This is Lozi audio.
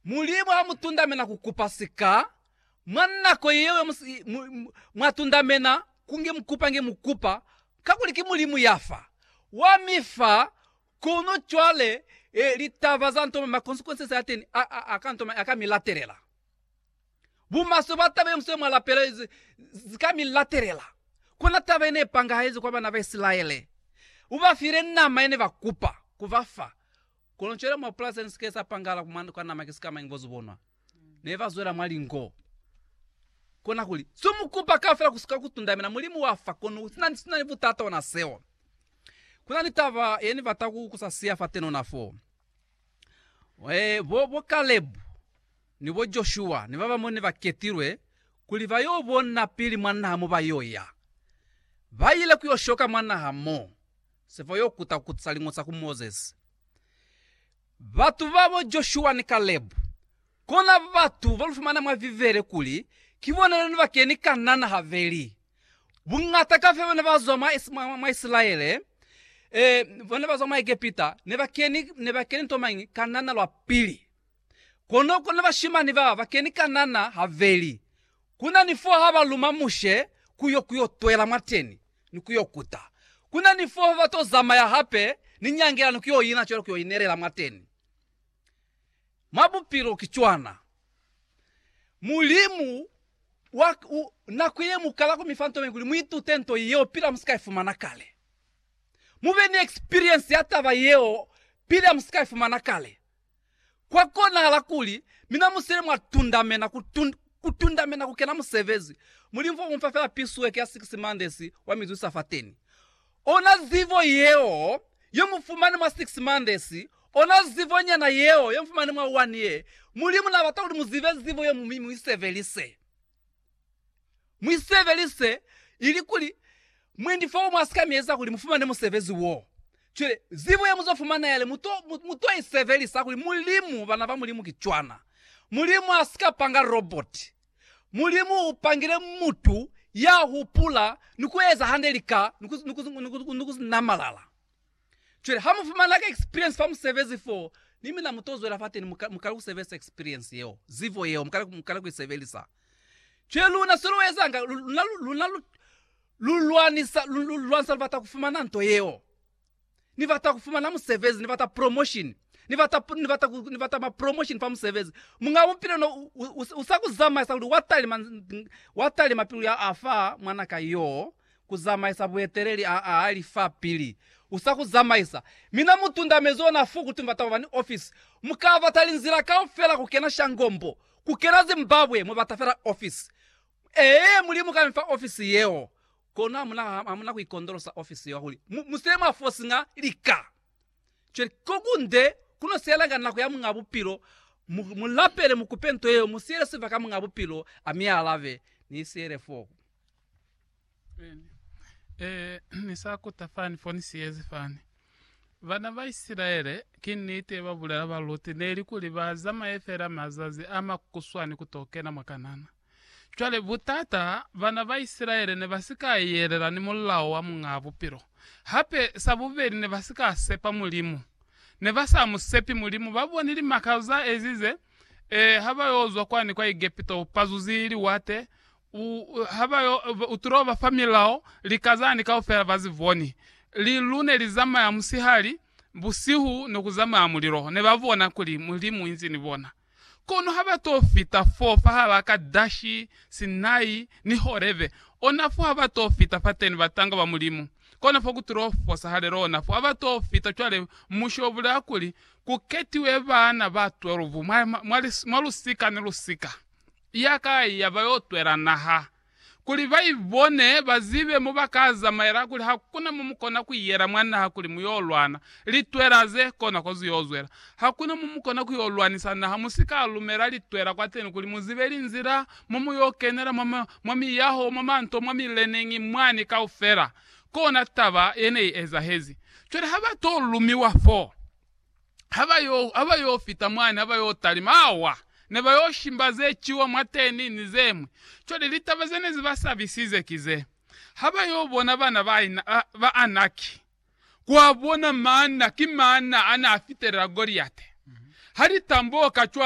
Mulimu ha mu tundamena ku kupa sika, mwa nako ye yo mu si mwa tundamena ku nge mu kupa nge mu kupa, kakuli ki Mulimu ya fa. Wa mi fa, kono cwale eh, litaba za ntoma, ma consequences a teni a, a, a ka ntoma, a ka mi latelela. Bumaswe bwa taba ye musweu mwa lapela zi, zi ka mi latelela. Kona taba ye ne pangahezi kwa bana ba Isilaele. U ba file nama ye ne ba kupa ku ba fa, Kono cwale mwa pulasi ni si ke sa pangala ku mwa kwa nama ki sikamañi bo zubonwa. Ne ba zwela mwa lingo. Kona kuli, Zo mu kupa kafela ku si ka ku tundamela Mulimu wa fa, kono sina, sina ni butata ona seo. Kuna ni taba ye ni bata ku, ku sa siya fateni ona fo. Eh, bo, bo Kalebu, ni bo Joshua, ni babañwi ne ba ketilwe kuli ba yo bona pili mwa naha mo ba yo ya. Ba ile ku yo shoka mwa naha mo. Se fa yo kuta kutisa liñosa ku Mozesi. Batu babo Joshua ni Kalebu, kona batu ba lu fumana mwa Bibele kuli ki bona ne ba keni Kanana habeli. Buñata ka fe ba ne ba zwa mwa, mwa, mwa Isilaele, eh, ba ne ba zwa mwa Egepita, ne ba keni, ne ba keni nto mañi? Kanana lwa pili. Kono, kono bashimani ba ba keni Kanana habeli. Ku na ni fo ha ba luma Mushe ku yo, ku yo twela mwateni. ni ku yo kuta. Ku na ni fo ba to zamaya hape ni nyangela ni ku yo ina cwale ku yo inelela mwateni. Mwa bupilo ki cwana. Mulimu wa u, nako ye mu kala ku mi fa nto ye kuli mu itute nto yeo pila mu si ka i fumana kale. Mu be ni eksperiense ya taba yeo pila mu si ka i fumana kale. Kwa konahala kuli mina musele mwa tundamena ku, ku tundamena ku kena musebezi. Mulimu fo u mufa fela pisueke ya six months wa mi zwisa fateni. Ona zibo yeo yo mu fumani mwa six months, ona zibo nyana yeo yo mu fumani mwa one year. Mulimu na bata kuli mu zibe zibo yeo mi mu i sebelise. Mu i sebelise ili kuli mwendi fo umwe a si ka mi eza kuli mu fumane musebezi wo. Cwale, zibo ye mu zo fumana yale mu to, mu, mu to i sebelisa kuli Mulimu, bana ba Mulimu ki cwana. Mulimu a si ka panga roboti. Mulimu u pangile mutu ya hupula ni ku eza hande lika ni ku, ni ku, ni ku, ni ku namalala. Cwale ha mu fumana ka experience fa musebezi fo, ni mina mu to zwela fateni mu, mu kale ku sebelisa experience yeo, zibo yeo, mu kale, mu kale ku i sebelisa. Cwale luna se lu ezanga, luna, luna lu, lu lwanisa, lu, lu lwanisa, lu bata ku fumana nto yeo. Ni bata ku fumana musebezi, ni bata promotion, ni bata, ni bata, ni bata ma promotion fa musebezi. Munga bupilo no u, u, u sa ku zamaisa kuli wa talima, wa talima pilu ya afa mwana ka yoo, Ku zamaisa bueteleli a a li fa pili. U sa ku zamaisa. Mina mu tundamezi ona fu kuti mubata kuba ni ofisi. Mu ka bata linzila kaufela ku kena shangombo, ku kena Zimbabwe, mu bata fela ofisi. Ee, Mulimu ka mi fa ofisi yeo. Kono hamuna, hamuna ku ikondolosa ofisi yeo kuli mu, mu se mwa fosiña lika. Cwale, ko kunde ku no sielanga nako ya Muñ'a Bupilo. Mu, mu lapele, mu kupe nto yeo, mu siele sibaka Muñ'a Bupilo a mi alabe. Ni siele foo. Ni sa kuta fani fo ni siyezi fani. Bana ba Isilaele, ki niti ba bulela ba Luti, ne li kuli ba zamaye fela mazazi a makuswani ku to kena mwa Kanana. Cwale butata, bana ba Isilaele ne ba si ka yelela ni mulao wa Muñaa Bupilo. Hape, sa bubeli ne ba si ka sepa Mulimu. Ne ba sa mu sepi Mulimu. Ba boni limaka za ezize ha ba yo zwa kwani kwa Egepito, pazuzi, liwate, U, ha ba yo, u tulo ba fa milao, lika zani kaufela ba zi boni. Li, lu ne li zamaya musihali, busihu ne ku zamaya mulilo, ne ba bona kuli Mulimu inzi ni bona. Kono ha ba to fita fo, fahalaa Kadashi, Sinai, ni Horebe, ona fo ha ba to fita fateni batanga ba Mulimu, kona fo ku tulo fosahalela ona fo ha ba to fita. Cwale Mushe u bulela kuli ku ketiwe baana ba 12 mwa, mwa, mwa lusika ni lusika. ya kai ya ba yo twela naha, kuli ba i bone, ba zibe mo ba ka zamaela, kuli ha ku na mo mu kona ku yela mwa naha kuli mu yo lwana. Litwela ze kona ko zu yo zwela. Ha ku na mo mu kona ku yo lwanisa naha, mu si ka lumela litwela kwateni kuli mu zibe linzila mo mu yo kenela mwa, mwa miyaho, mwa manto, mwa mileneñi mwani kaufela. Kona taba ye ne i ezahezi. Cwale ha ba to lumiwa foo, ha ba yo, ha ba yo fita mwani, ha ba yo talima, awa, ne ba yo shimba ze ciwa mwateni, ni ze ñwi. Cwale, litaba ze ne zi ba sabisize ki ze, ha ba yo bona bana ba, ba, ba Anaki, kwa bona maana, ki maana a n'a fitelela Goliate, ha li tamboka cwani.